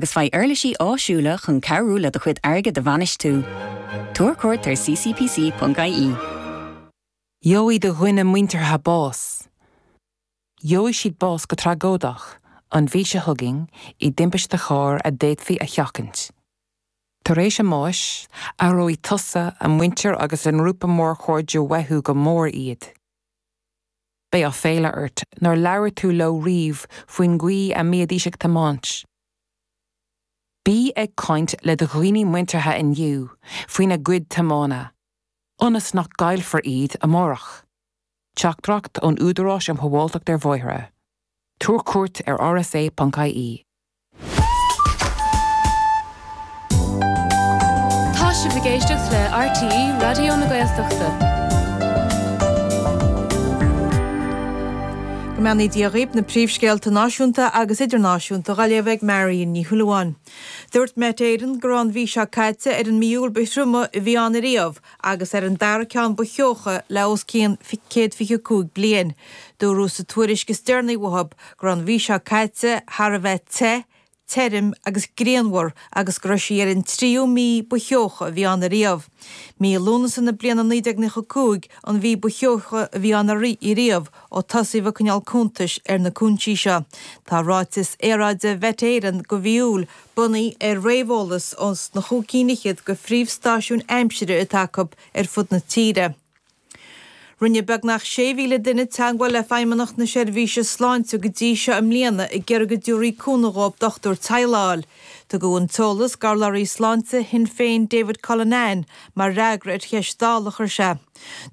agus faigh uirlisí áisiúla chun cabhrú le do chuid airgeadais a bhainistiú. Tabhair cuairt ar ccpc.ie. Gheobhaidh do dhaoine muinteartha bás. Gheobhaidh siad bás go tragóideach an mhí seo chugainn i dtimpiste cairr a d'fhéadfaí a sheachaint. Tar éis a mbáis, aireoidh tusa, a muintir agus a ngrúpa mór cairde uathu go mór iad. Beidh aiféala ort nár labhair tú leo riamh faoin gcaoi a mbíodís ag tiomáint. Bí ag caint le do dhaoine muinteartha inniu faoina gcuid tiomána, ionas nach gcaillfear iad amárach. Teachtaireacht ón Údarás um Shábháilteacht ar Bhóithre. Tabhair cuairt ar rsa.ie. Tá sibh ag éisteacht le RTÉ Raidió na Gaeltachta. Go mbeannaí Dia dhaoibh na príomhscéalta náisiúnta agus idirnáisiúnta dhaoibh ag Marian Ní Shúilleabháin. Dúirt Met Éireann go raibh an mhí seo caite ar an mí Iúil ba thrioma a bhí ann ariamh, agus ar an dara ceann ba theocha le os cionn céad fiche cúig bliain. Dúradh sa tuairisc is deireanaí uathu go raibh an mhí seo caite thar a bheith te, tirim agus grianmhar agus go raibh sí ar an tríú mí ba theocha a bhí ann ariamh. Mí Lúnasa na bliana 1995 an mhí ba theocha a bhí ann ariamh ó tosaíodh ag coinneáil cuntais ar na cúinsí seo. Tá ráiteas aeráide Mhet Éireann go mhí Iúil bunaithe ar réamheolas ó na chúig cinn fhichead go phríomhstáisiúin aimsire atá acu ar fud na tíre. Rinne beagnach 6,000 duine teagmháil le Feidhmeannacht na Seirbhíse Sláinte go dtí seo i mbliana ag iarraidh go dtabharfaí cúnamh dhóibh dochtúir teaghlaigh a fháil. Tugadh an t-eolas go urlabhraí Sláinte Shinn Féin David Cullinane mar fhreagra ar cheist Dála a chuir sé.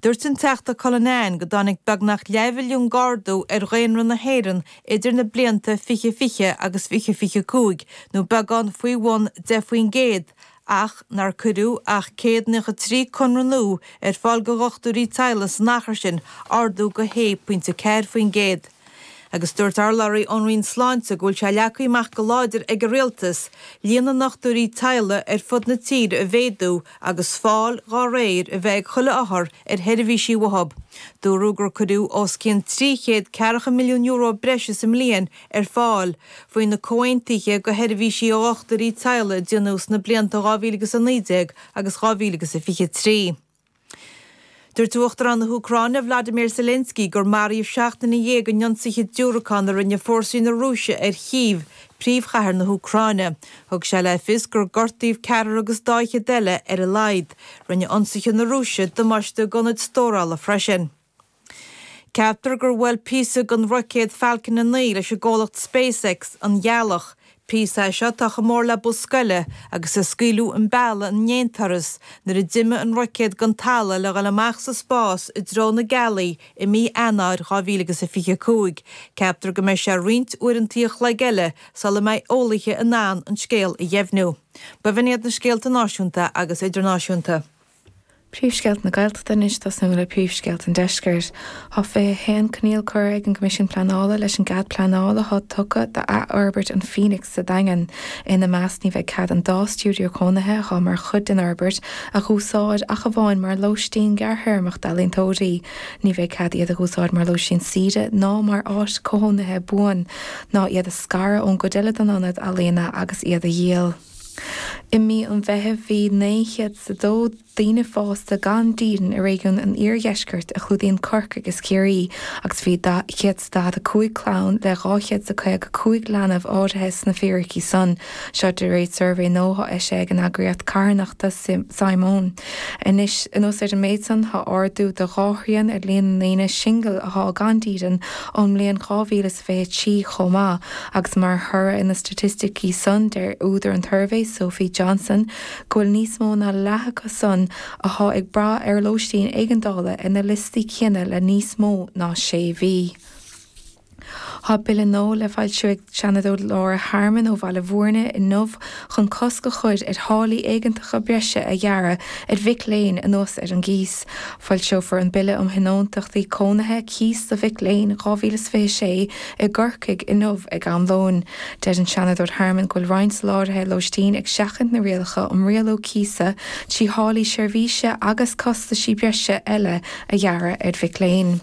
Dúirt an Teachta Cullinane go dtáinig beagnach leathmhilliún d'ardú ar dhaonra na hÉireann idir na blianta 2020 agus 2025, nó beagán faoi bhun 10 faoin gcéad, ach nár cuireadh ach 193 conradh nua ar fáil go dhochtúirí teaghlaigh san achar sin, ardú go 1.4%. agus dúirt urlabhraí ón Roinn Sláinte go bhfuil sé leagtha amach go láidir ag an Rialtas líon na ndochtúirí teaghlaigh ar fud na tíre a mhéadú agus fáil dá réir a bheith ag chuile othar ar sheirbhísí uathu. Dúradh gur cuireadh os cionn trí chéad ceathracha milliún euro breise sa mbliain ar fáil faoi na comhaontuithe go sheirbhísí dochtúirí teaghlaigh a déanadh sna blianta 2019 agus 2023. Dúirt Uachtarán na hÚcráine Vladimir Zelensky gur maraíodh seacht nduine dhéag in ionsaithe diúracáin a rinne fórsaí na Rúise ar Chív, príomhchathair na hÚcráine. Thug sé le fios gur gortaíodh ceathrar agus daichead eile ar a laghad. Rinne ionsaithe na Rúise damáiste d'ionaid stórála freisin. Ceaptar gur bhuail píosa den roicéad Falcon 9 leis an gcomhlacht SpaceX an ghealach. Píosa é seo atá chomh mór le bus scoile agus a scaoileadh chun bealaigh in aon turas nuair a d'imigh an roicéad den talamh le dhul amach sa spás i dtreo na gealaí i mí Eanáir 2025. Ceaptar go mbeidh sé roinnt uaireantaí an chloig eile sula mbeidh eolaithe in ann an scéal a dheimhniú. B'in iad na scéalta náisiúnta agus idirnáisiúnta. Príomhscéalta na Gaeltachta anois tosnú le príomhscéalta an Deiscirt. Tá 21 coinníoll curtha ag an gCoimisiún Pleanála leis an gcead pleanála atá tugtha d'athfhorbairt an Phoenix sa Daingean. Ina measc ní bheidh cead an dá stiúideo cónaithe atá mar chuid den fhorbairt a dh'úsáid ach amháin mar lóistín gearrthéarmach d'ealaíontóirí. Ní bheidh cead iad a dh'úsáid mar lóistín saoire ná mar áit cónaithe buan, ná iad a scaradh ón gcuid eile den ionad ealaíona agus iad a dhíol. I mí an Mheithimh bhí 902 daoine fásta gan dídean i réigiún an iardheiscirt a chlúdaíonn Corcaigh is Ciarraí agus bhí 145 clann le 255 leanbh áirithe sna fíricí san, seo de réir suirbhé nua eisithe ag an eagraíocht carthanachta Simon. Anois, anuas ar an méid san, tá ardú de dhá thrian ar líon na ndaoine singil atá gan dídean ón mbliain 2023 chomh maith. agus mar thoradh ar na staitisticí san deir údar an tsuirbhé, Sophie Johnston, go bhfuil níos mó ná leath acu san athá ag brath ar lóistín éigeandála ar na liostaí céanna le níos mó ná sé mhí. Tá Bille nua le foilsiú ag Seanadóir Laura Harmon ó Bhaile Mhúirne inniu chun cosc a chur ar tháillí éigeantacha breise a ghearradh ar mhic léinn anuas ar an gcíos. Foilseofar an Bille um Thionóntachtaí Cónaithe, Cíos do Mhic Léinn, 2026 i gCorcaigh inniu ag am lóin. Deir an Seanadóir Harmon go bhfuil roinnt soláthraithe lóistín ag seachaint na rialacha um rialú cíosa trí tháillí seirbhíse agus costaisí breise eile a ghearradh ar mhic léinn.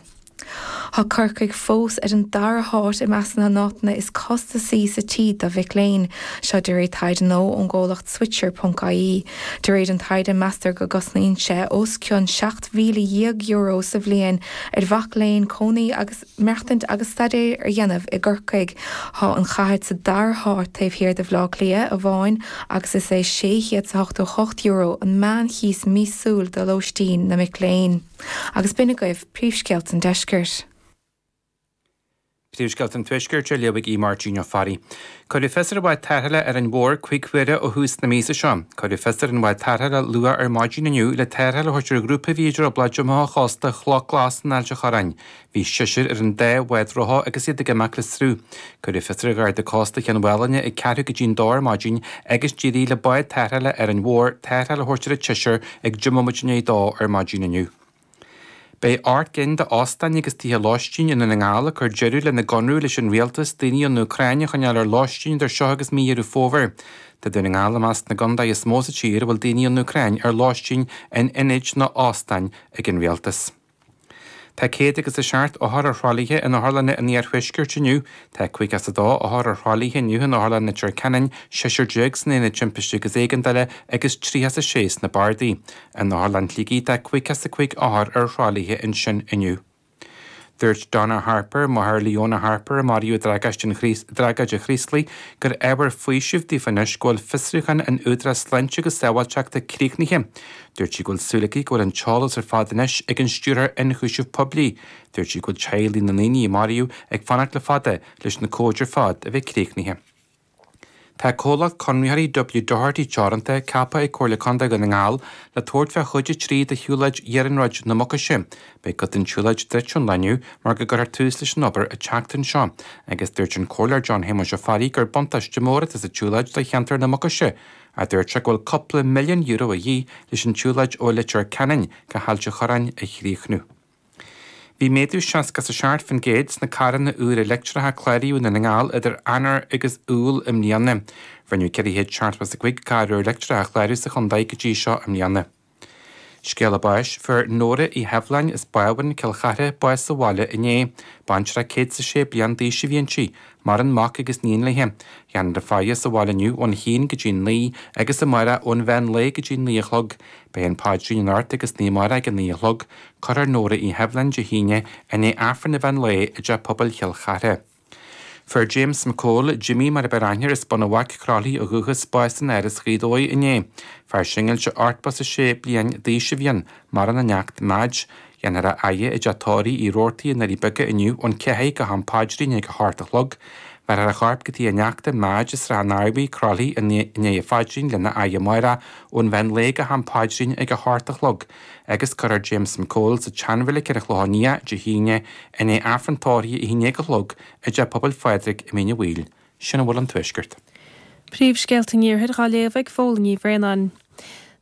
Tá Corcaigh fós ar an dara háit i measc na n-áiteanna is costasaí sa tír do mhic léinn, seo de réir taighde nua ón gcomhlacht Switcher.ie. De réir an taighde, meastar go gcosnaíonn sé os cionn €17,000 sa bhliain ar mhac léinn cónaí agus maireachtaint agus staidéar a dhéanamh i gCorcaigh. Tá an chathair sa dara háit taobh thiar de Bhleá Cliath amháin agus is é €688 an meánchíos míosúil do lóistín na mic léinn. Agus b'in agaibh Príomhscéalta an Deiscirt. Príomhscéalta an Tuaiscirt á léamh ag Aodh Máirtín Ó Fearraigh. Cuireadh fios ar an bhád tarrthála Árainn Mhór cúig huaire ó thús na míosa seo. Cuireadh fios ar an bhád tarrthála luath ar maidin inniu le tarrtháil a thabhairt ar ghrúpa a bhí i dtrioblóid amach ó chósta Chloch Ghlas in Ailt a' Chorráin. Bhí seisear ar an dá bhád rotha agus iad ag imeacht le sruth. Cuireadh fios ar Gharda Cósta Cheann Mhálainne ag ceathrú go dtí an dó ar maidin agus d'éirigh le bád tarrthála Árainn Mhór tarrtháil a thabhairt ar an tseisear ag deich mbomaite i ndiaidh a dó ar maidin inniu. Beidh ocht gcinn d'óstáin agus tithe lóistín i nDún na nGall ag cur deireadh lena gconradh leis an Rialtas, daoine ón Úcráin a choinneáil ar lóistín idir seo agus mí Dheireadh Fómhair Tá Dún na nGall i measc na gcontae is mó sa tír a bhfuil daoine ón Úcráin ar lóistín in ionaid nó óstáin ag an Rialtas. Tá céad agus a seacht othar ar thralaithe in Otharlanna an Iarthuiscirt inniu, tá caoga is a dó othar ar thralaithe inniu in Otharlann Leitir Ceanainn, seisear déag san Aonad Timpistí agus Éigeandála agus tríocha is a sé sna Bardaí. In Otharlann Shligigh tá caoga is a cúig othar ar thralaithe ansin inniu. Dúirt Donna Harper, máthair Leona Harper a maraíodh i dtragóid an Chraoslaigh, gur ábhar faoisimh daofa anois go bhfuil fiosrúchán an Údaráis Sláinte agus Sábháilteachta críochnaithe. Dúirt sí go bhfuil súil aici go bhfuil an t-eolas ar fad anois ag an Stiúrthóir Ionchúiseamh Poiblí. Dúirt sí go bhfuil teaghlaigh na ndaoine a maraíodh ag fanacht le fada leis na comhaid ar fad a bheith críochnaithe. Tá comhlacht conraitheoirí W Doherty Teoranta ceaptha ag Comhairle Contae Dhún na nGall le tabhairt faoi chuid a trí de shiúlóid Iarnróid na Mucaise. Beidh cuid den tsiúlóid druidte ón lá inniu mar go gcuirfear tús leis an obair an tseachtain seo agus dúirt an Comhairleoir John Shéamuis Ó Fearraigh gur buntáiste mór atá sa tsiúlóid do cheantar na Mucaise a dúirt sé go bhfuil cúpla milliún euro a dhíth leis an tsiúlóid ó Leitir Ceanainn go hAilt a' Chorráin a chríochnú. Bhí méadú seasca is a seacht faoin gcéad sna carranna úra leictreacha a cláraíodh i nDún na nGall idir Eanáir agus Iúil i mbliana. Rinneadh ceithre chéad seachtó is a cúig carr úr leictreach a chlárú sa chontae go dtí seo i mbliana. Scéala báis. Fuair Nóra Uí Sheibhleáin as Bábhún Cill Chartha bás sa bhaile inné. Baintreach 106 bliain d'aois a bhí inti, maireann mac agus níon léi. Dhéanfar a faire sa bhaile inniu ón haon go dtí 9 agus amárach ón mheán lae go dtí 9 a chlog. Beidh an Páidrín anocht agus san oíche amárach ag 9 a chlog. Cuirfear Nóra Uí Sheibhleáin Dé hAoine i ndiaidh Aifreann an mheán lae i dTeach Pobail Chill Chartha. Fuair James McCole, Jimmy mar ab fhearr aithne air, as Bun an Bhaic, Croithlí ó dhúchas, bás in Áras Ghaoth Dobhair inné. Fear singilte 86 bliain d'aois a bhí ann, maireann a neacht Madge. Dhéanfar a fhaire i dteach tórraimh Uí Rabhartaigh i nDoirí Beaga inniu ón ceathair go ham paidrín ag a hocht a chlog. Bhéarfar a chorp go tigh a neachta Madge i Srath an Arbhair, Croithlí i ndiaidh an phaidrín lena fhaire amárach ón mheán lae go ham paidrín ag a hocht a chlog. agus cuirfear James McCole sa tseanreilig ar an Chlochán Liath Dé hAoine, i ndiaidh Aifreann tórraimh a haon déag a chlog i dTeach Pobail Phádraig i Mín Uí Bhaoill. Sin a bhfuil ón Tuaisceart. Príomhscéalta an Iarthair dhá léamh ag Phóilín Ní Bhraonáin.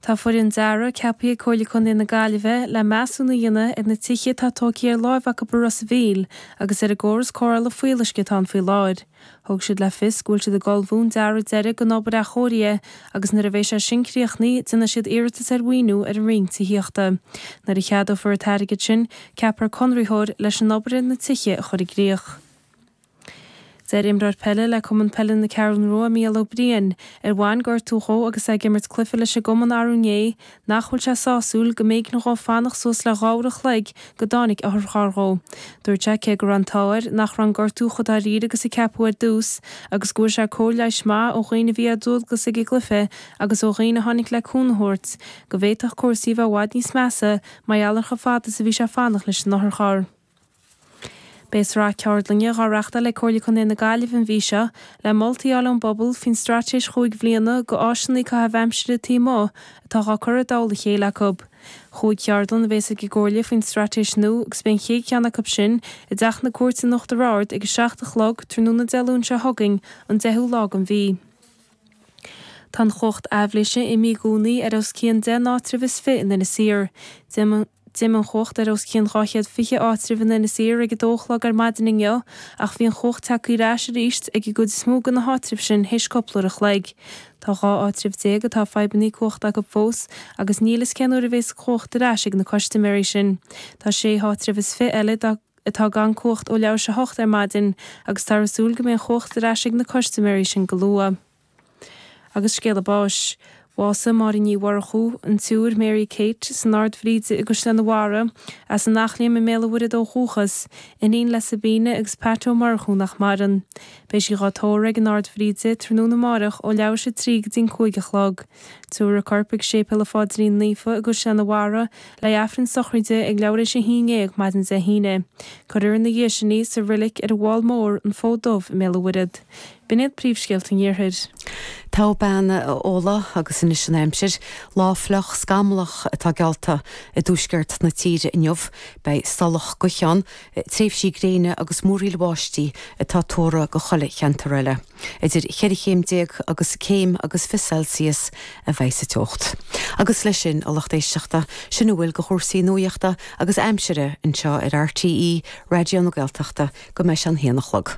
Tá foireann dearaidh ceapaithe ag Comhairle Contae na Gaillimhe le measúnú a dhéanamh ar na tithe atá tógtha ar láimh acu i Ros a' Mhíl agus ar an gcóras cóireála fuíolluisce atá ann faoi láthair. Thug siad le fios go bhfuil siad ag ullmhú an dearadh deiridh don obair athchóirithe agus nuair a bheidh sé sin críochnaithe, déanfaidh siad iarratas ar mhaoiniú ar an roinn tithíochta. Nuair a cheadófar an t-airgead sin, ceapfar conraitheoir leis an obair ar na tithe a chur i gcríoch. Deir imreoir peile le Cumann Peile na Ceathrún Rua, Mícheál Ó Briain, ar bhain gortú dhó agus é ag imirt cluiche leis an gcumann arú inné, Nach bhfuil sé sásúil go mb'éigean dhó fanacht suas le dhá uair an chloig go dtáinig otharcharr dhó. Dúirt sé cé go raibh an t-ádh air nach raibh an gortú chomh dáiríre agus a ceapadh ar dtús, agus go bhfuair sé cóir leighis maith ó dhaoine a bhí ar dualgas ag an gcluiche agus ó dhaoine a tháinig le cúnamh a thabhairt, go bhféadfadh cúrsaí a bheith i bhfad níos measa mar gheall ar chomh fada is a bhí sé ag fanacht leis an otharcharr. Beidh sraith ceardlainne dhá reachtáil ag Comhairle Contae na Gaillimhe an mhí seo, le moltaí a fháil ón bpobal faoin straitéis chúig bhliana go áiseanna caitheamh aimsire taobh amuigh atá dhá cur i dtoll a chéile acu. Chúig cheardlann a bhéas ag an gComhairle faoin straitéis nua agus beidh an chéad cheann acu sin i dTeach na Cúirte in Uachtar Ard ag a seacht a chlog tráthnóna Dé Luain seo chugainn, an deichiú lá den mhí. Tá an chumhacht aibhléise imithe i gcónaí ar os cionn 10 n-áitreabh is fiche in Inis Oírr. D'imigh an chumhacht ar os cionn 220 áitreabh in Inis Oírr ag 2 a chlog ar maidin inniu ach bhí an chumhacht tagtha ar ais arís ag an gcuid is mó de na háitribh sin théis cúpla uair a chloig. Tá 12 áitreabh atá fadhbanna cumhachta acu fós agus níl fhios cén uair a bhéas an chumhacht ar ais ag na custaiméirí sin. Tá 6 háitreabh is fiche eile dá atá gan cumhacht ó leathuair théis a 8 ar maidin agus táthar ag súil go mbeidh an chumhacht ar ais ag na custaiméirí sin go luath. Agus scéala báis. Bhásaigh Máire Ní Mhurchú, an tSiúr Mary Kate, san Ard Bhríde i gCaisleán an Bharraigh, as an Eachléim i mBéal an Mhuirthead ó dhúchas, iníon le Sabina agus Pat Ó Murchú nach maireann. Beidh sí dhá tórramh ag an Ard Bhríde tráthnóna amárach ó leathuair théis a 3 go dtí an cúig a chlog. Tabharfar a corp ag Séipéal an Phaidrín Naofa i gCaisleán an Bharraigh, le Aifreann Sochraide ag leathuair théis a haon déag maidin Dé hAoine. Cuirfear ina dhiaidh sin í sa reilig ar an bhFál Mór, an Fód Dubh, i mBéal a' Mhuirthead. B'in iad príomhscéalta an iarthair. Tá bean Fhódhla, agus anois an aimsir, lá fliuch, scamallach, atá geallta i dtuaisceart na tíre inniu. Beidh salach gaoithe ann, tréimhsí gréine agus múraíl bháistí atá tuartha go chuile cheantar eile. Idir cheithre chéim déag agus céim agus fiche Celsius a bheidh sa teocht. Agus leis sin, a lucht éisteachta, sin a bhfuil de chúrsaí nuachta agus aimsire anseo ar RTÉ Raidió na Gaeltachta go mbeidh sé an haon a chlog.